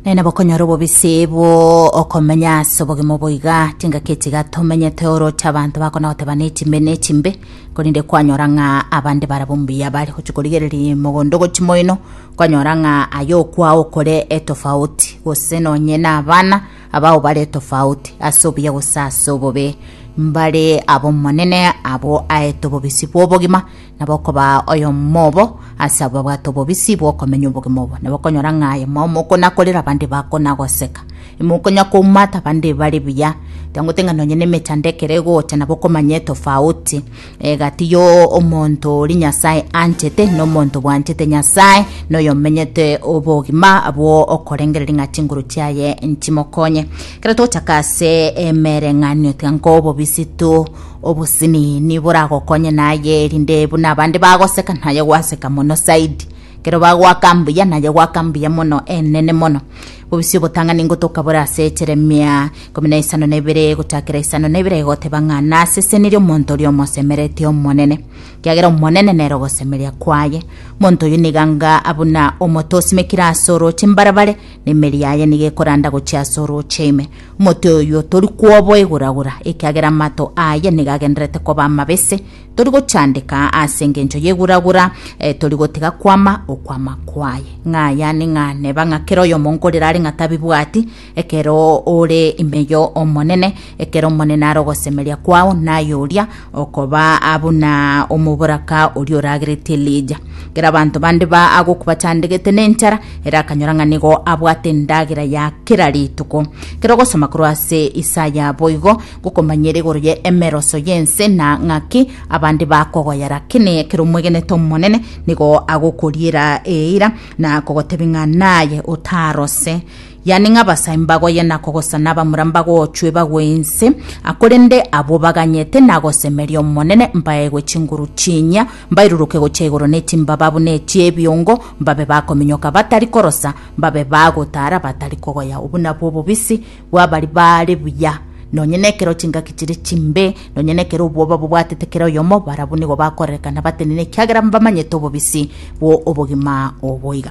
naye nabokonyora obobisi bw'okomenya ase obogima oboiga tingaki etiga tomenyete oroche abanto bakona goteba nechimbe nechimbe korende kwanyora ng'a abande barabwo mbuya bare gochi korigereria mogondo gochi moino kwanyora ng'a aye okwao okore etofauti gose nonye na abana abao bare etofauti ase obuya gose ase obobe mbare ab'omonene abwo aete obobisi bw'obogima na bokobaa oyomo obo ase abwo babwate obobisi bw'okomenya obogima obo, na bakonyora ng'a aye mao mokonakorera abande bakonagoseka. Imokonya koumata abande bare buya, tangote ng'a nonye nemechando ekero egocha nabo okomanya etofauti egati y'omonto oria Nyasae anchete na omonto bwanchete Nyasae na oyomenyete obogima abwo okorengereria ng'a chinguru chiaye nchimokonye. Ekero togochaka ase emereng'anio tiga nkobobisi tu Obosemi niboragokonye naye, erinde buna abande bagoseka naye gwaseka mono zaidi. Kero bagoaka mbuya naye goaka mbuya mono enene mono. Bobisi obotang'ani ngotoka bore ase Yeremia ikomi na isano na ibere gochakera isano na ibere egoteba ng'a nasesenirie omonto oria omosemereti Omonene, kiagera Omonene nere ogosemeria kwaye. Omonto oyio niga nga buna omote osimekire ase orooche mbarabare, na emeri yaye niga ekoranda gochia ase orooche ime. Omote oyio tori kwoboiguragura, ekiagera amato aye nigo agendererete koba amabese, tori gochandeka ase engencho y'iguragura, eh, tori gotiga kwama okwama kwaye. Ng'a yane ng'a neba ng'a kera oyomo nkorera are ng'a tabibwati, ekero ore ime yo Omonene, ekero Omonene are ogosemeria kwao, naye oria Okoba aa buna omoboraka oria oragerete Elija. Ekero abanto bande ba agoku bachandegete nenchara, ere akanyora ng'a nigo abwate endagera ya kera rituko. Ekero ogosoma korwa ase Isaya boigo, gokomanyere igoro ye emeroso y'ense na ng'aki abande bakogoyera. Kene ekero omwegenete Omonene, nigo agokoriera eira na kogotebi ng'a naye otarose. Yaani ng'abasae mbagoye na kogosana abamura mbagochwe bagwe inse, korende abwo baganyete nagosemeria Omonene, mbaegwe chinguru chinyia, mbairuruke gochia igoro ne chimbaba buna echi'ebiongo, mbabe bakominyoka batari korosa, mbabe bagotara batari kogoya. Obwo nabwo obobisi bw'abari baare buya, nonye nekero chingaki chire chimbe, nonye nekero obwoba bobwatete kera oyomo, barabwo nigo bakorerekana batenene ekiagera mbamanyete obobisi bw'obogima oboiga.